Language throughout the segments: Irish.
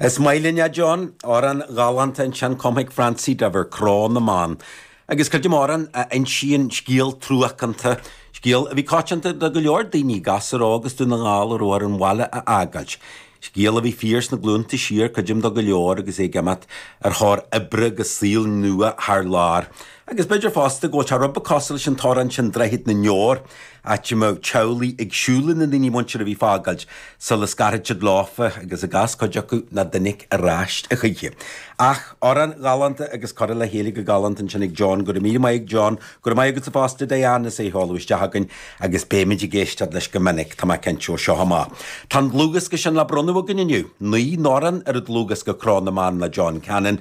Is maith linn é, John. Amhrán galánta ansin cumtha ag Francie Diver, Cró na mBan. Agus creidim amhrán a insíonn scéal truacánta, scéal a bhí coitianta do go leor daoine, gasúr óg as Dún na nGall a raibh air an bhaile a fhágáilt. Scéal a bhí fíor sna glúnta siar, creidim do go leor agus é ag imeacht ar thóir oibre agus saol nua thar lear. Agus b'fhéidir fosta go bhfuil sé rud beag cosúil leis an t-amhrán sin Droichead na nDeor, áit a mbeadh teaghlaigh ag siúl lena ndaoine muinteartha a bhí ag fágáilt sula scarfadh siad leofa agus i gcás cuid acu nach dtáinig ar ais choíche. Ach amhrán galánta agus curtha le chéile go galánta ansin ag John, go raibh míle maith ag John. Go raibh maith agatsa fosta Diane as é a sheoladh isteach chugainn agus beidh muid ag éisteacht leis go minic, tá mé cinnte, ó seo amach. Tá an dlúthdhiosca sin le bronnadh againn inniu. Naoi n-amhrán ar an dlúthdhiosca Cró na mBan le John Cannon.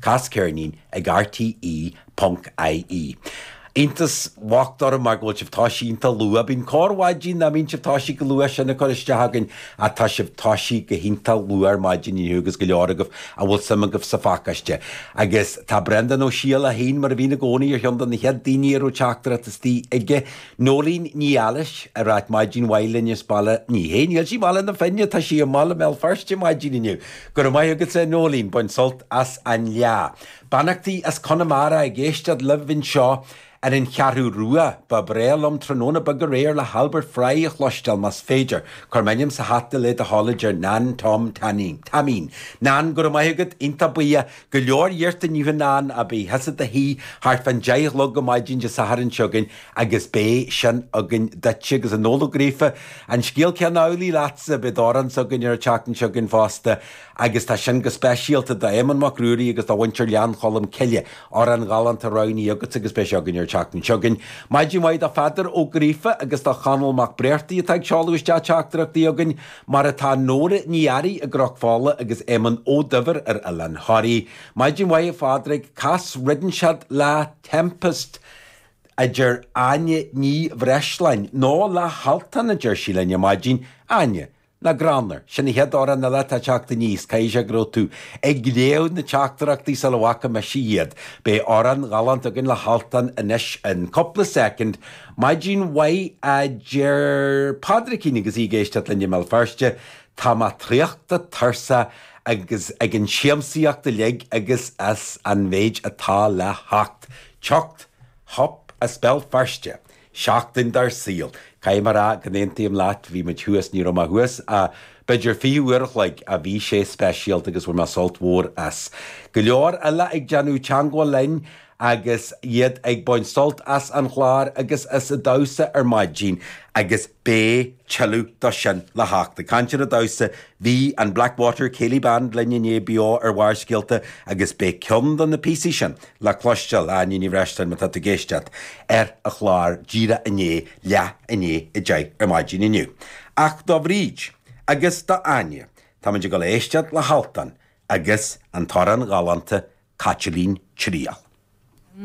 Cas ceirnín ag RTÉ.ie. Iontas bhocht orm mar go bhfuil sibh toisithe iontach luath. Bíonn corrmhaidin nach mbíonn sibh toisithe chomh luath sin ag cur isteach chugainn ach tá sibh toisithe go hiontach luath ar maidin inniu agus go leor agaibh a bhfuil suim agaibh sa phacáiste. Agus tá Breandán Ó Siadhail féin mar a bhíonn i gcónaí ar cheann de na chéad daoine a raibh teachtaireacht istigh aige. Noeleen Ní Fheallais ag ráit maidin mhaith linn as Baile, ní hea. Níl sí i mBaile na Finne, tá sí i mbaile Bhéal Feirste maidin inniu. Go raibh maith agatsa a Noeleen, bain sult as an Fhleá. Beannachtaí as Conamara ag éisteacht libh anseo ar an Cheathrú Rua. Ba bhreá liom tráthnóna beag aréir le hAlbert Fry a chloisteáil, más féidir, cuir m'ainm sa hata le do thoil, a deir Nan Tom Taimín. Nan, go raibh maith agat, iontach buíoch. Go leor iarrtha inniu a Nan, ach bí thusa i do shuí thart fán deich a chlog ar maidin Dé Sathairn seo chugainn, Agus beidh sin againn duitse, agus Noel Ó Gríofa, an scéal céanna amhlaidh leatsa, beidh d'amhránsa againn ar an tseachtain seo chugainn fosta, agus tá sin go speisialta d'Éamonn Mac Ruairí agus do mhuintir Ghleann Cholm Cille, amhrán ghalánta roghnaithe agatsa agus beidh sé againn ar an tseachtain seo chugainn. Maidin mhaith do Pheadar Ó Gríofa agus do Chonall Mac Bréartaigh atá ag seoladh isteach teachtaireachtaí chugainn, mar atá Nóra Ní Fhearraigh i gCnoc Fola agus Éamonn Ó Duibhir ar Oileán Thoraí. Maidin mhaith a Phádraig, cas Ritheann Siad le Tempest? a deir Áine Ní Bhreisleáin. Nó le hAltan, a deir sí linn ar maidin. Áine, nach greannmhar, sin an chéad amhrán eile atá ag teacht aníos, caithfidh sé go raibh tú ag léamh na teachtaireachtaí sula bhfaca mise iad. Beidh amhrán galánta againn le hAltan anois in cúpla soicind. Maidin mhaith, a deir Pádraigín agus í ag éisteacht linn i mBéal Feirste. Tá mé traochta, tuirseach ag an siamsaíocht uilig agus as an mhéid atá le theacht. Teacht, Hup as Béal Feirste! Seachtain dár saol! Caithfidh mé a rá go n-aontaím leat, bhí muid thuas, ní raibh mé thuas ach b'fhéidir 20 uair a chloig ach bhí sé speisialta agus bhain mé sult mhór as. Go leor eile ag déanamh teangmháil linn agus iad ag baint sult as an chlár agus as an damhsa ar maidin agus beidh tuilleadh do sin le theacht. Ag caint ar an damhsa, Bhí an Blackwater Céilí Band linn inné beo ar Bharrscéalta agus beidh ceann de na píosaí sin le cloisteáil, Áine Ní Bhreisleáin má tá tú ag éisteacht, ar an chlár Dé hAoine Leath Aoine ag deich ar maidin inniu. Ach do Bhríd agus do Áine, táimid ag dul a éisteacht le hAltan agus an t-amhrán galánta Caitilín Triall.